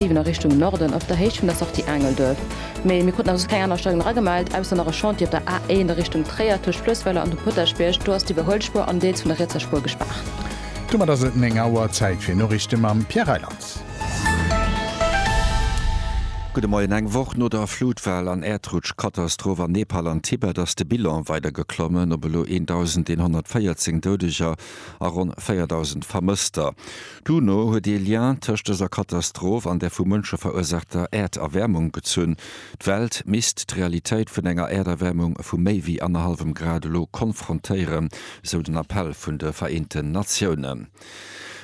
7 a Richtung Norden op der Héicht vun der Sortie Aangelduerf. Mee mir kruten als keng aner Steigung eragemellt, ausser nach e Chantier op der A1 a Richtung Tréier tëscht Fluessweiler an dem Potaschbierg. Do ass d'Iwwerhuelspuer an deels vun der rietser Spuer gespaart. Domat ass et 9 Auer. Zäit fir Noriichte mam Pierre Reyland. Gudde Moien. Eng Woch no der Flutwell an Äerdrutschkatastroph an Nepal an Tibet ass de Bilan weider geklommen op elo 1.114 Doudeger a ronn 4.000 Vermësster. D'UNO huet ee Lien tëscht dëser Katastroph an der vu Mënsche verursaachter Äerderwärmung gezunn. D'Welt misst d'Realitéit vun enger Äerderwärmung vu méi wéi annerhallwem Grad elo konfrontéieren, esou den Appell vun de Vereenten Natiounen.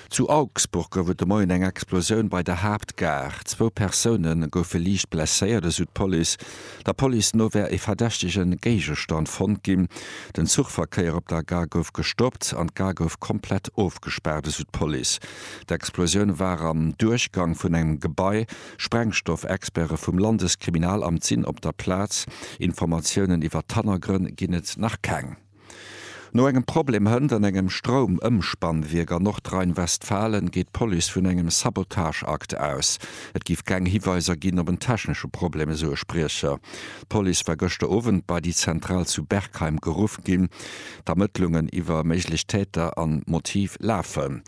Zu Augsburg gouf et de Moien eng Explosioun bei der Haaptgare. Zwou Persoune goufe liicht blesséiert, esou d'Police. Der Police no wär e verdächtege Géigestand fonnt ginn. Den Zuchverkéier op der Gare gouf gestoppt an d'Gare gouf komplett ofgespaart, esou d'Police. D'Explosioun war am Duerchgang vun engem Gebai. Sprengstoffexperte vum Landeskriminalamt sinn op der Plaz. Informatiounen iwwer d'Hannergrënn ginn et nach keng. No engem Problem Hënt an engem Stroumëmspannwierk an Nordrhein-Westfalen geet d'Police vun engem Sabotageakt aus. Et géif keng Hiweiser ginn op en technesche Problem, esou e Spriecher. D'Police war gëschter Owend bei déi Zentral zu Bergheim geruff ginn. D'Ermëttlungen iwwer méiglech Täter an Motiv lafen.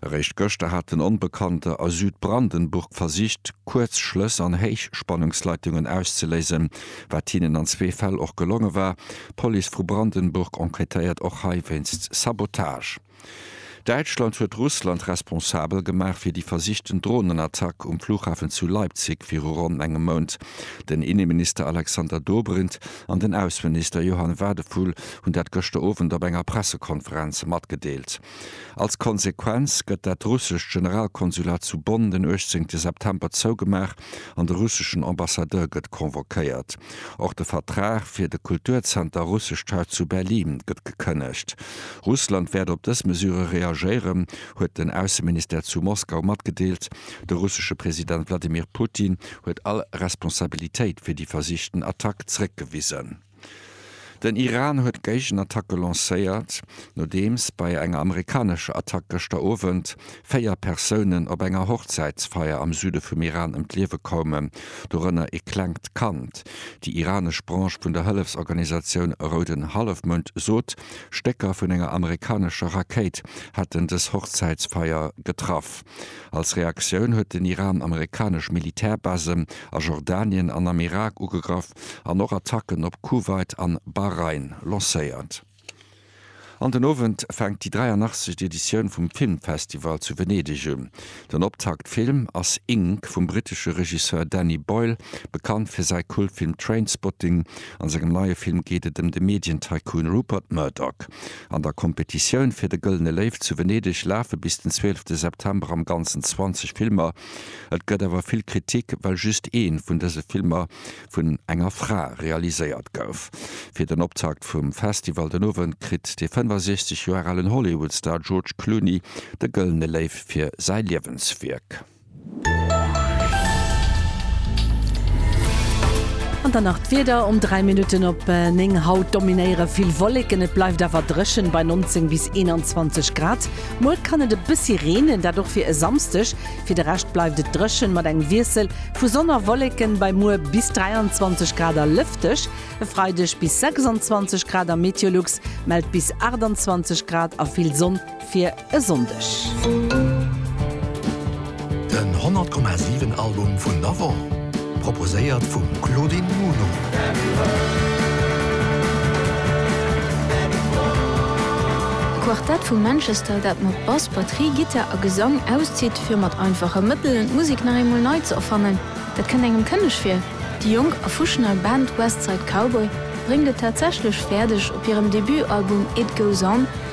Eréischt gëschter hat en Onbekannte a Südbrandenburg versicht, Kuerzschlëss an Héichspannungsleitungen auszeléisen, wat hinnen an zwee Fäll och gelonge war. D'Police vu Brandenburg enquêtéiert och hei wéinst Sabotage. Däitschland huet Russland responsabel gemaach fir déi versichten Dronenattack um Flughafen zu Leipzig viru ronn engem Mount. Den Inneminister Alexander Dobrindt an den Ausseminister Johann Wadephul hunn dat gëschter Owend op enger Pressekonferenz matgedeelt. Als Konsequenz gëtt dat russescht Generalkonsulat zu Bonn den 18 September zougemaach. an de russeschen Ambassadeur gëtt convoquéiert. Och de Vertrag fir de Kulturzenter Russescht Haus zu Berlin gëtt gekënnegt. Russland wäert op dës Mesure reagéieren, huet den Ausseministère zu Moskau matgedeelt. De russesche President Wladimir Putin huet all Responsabilitéit fir déi versichten Attack zréckgewisen. Den Iran huet d'Géigenattacke lancéiert, nodeems bei enger amerikanescher Attack gëschter Owend véier Persounen op enger Hochzäitsfeier am Süde vum Iran ëm d'Liewe koumen, dorënner ee klengt Kand. Déi iranesch Branche vun der Hëllefsorganisatioun Rouden Hallefmound sot, Stécker vun enger amerikanescher Rakéit hätten dës Hochzäitsfeier getraff. Als Reaktioun huet den Iran amerikanesch Militärbasen a Jordanien an am Irak ugegraff. an och Attacken op Kuwait an Bahrain lancéiert. An den Owend fänkt déi 83. Editioun vum Filmfestival zu Venedeg un. Den Optaktfilm ass Ink vum brittesche Regisseur Danny Boyle, bekannt fir säi Kultfilm Trainspotting. An sengem neie Film geet et ëm de Medien-Tycoon Rupert Murdoch. An der Kompetitioun fir de Gëllene Léiw zu Venedeg lafe bis den 12 September am Ganzen 20 Filmer. Et gëtt awer vill Kritik, well just ee vun dëse Filmer vun enger Fra realiséiert gouf. Fir den Optakt vum Festival den Owend kritt de 65 Joer alen Hollywood-Star George Clooney de Gëllene Léiw fir säi Liewenswierk. An dann nach d'Wieder, Um 3 Minutten op 9 haut dominéiere vill Wolleken, et bleift awer dréchen bei 19 bis 21 Grad. Muer kann et e bëssi reenen, dat och fir e Samsdeg. Fir de Rescht bleift et dréchen, mat engem Wiessel vu Sonn a Wolleken bei muer bis 23 Grad a lëfteg. E Freideg bis 26 Grad a Meteolux mellt bis 28 Grad a vill Sonn fir e Sonndeg. Den 100,7 Album vun der Woch, proposéiert vum Claudine Muno. D'Quartett vu Manchester, dat mat Bass, Batterie, Gittar a Gesang auszitt, fir mat einfache Mëttelen d'Musek nach eemol nei ze erfannen, dat kënnt engem kënneg vir. Déi jonk a fuschent nei Band West Side Cowboy bréngt et tatsächlech fäerdeg, op hirem Debutalbum It Goes On,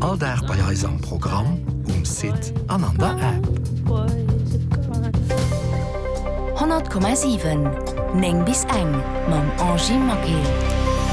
All Dag bei eis am Programm, um Site an an der App. 100,7 9 bis eng mam Angie Maquet.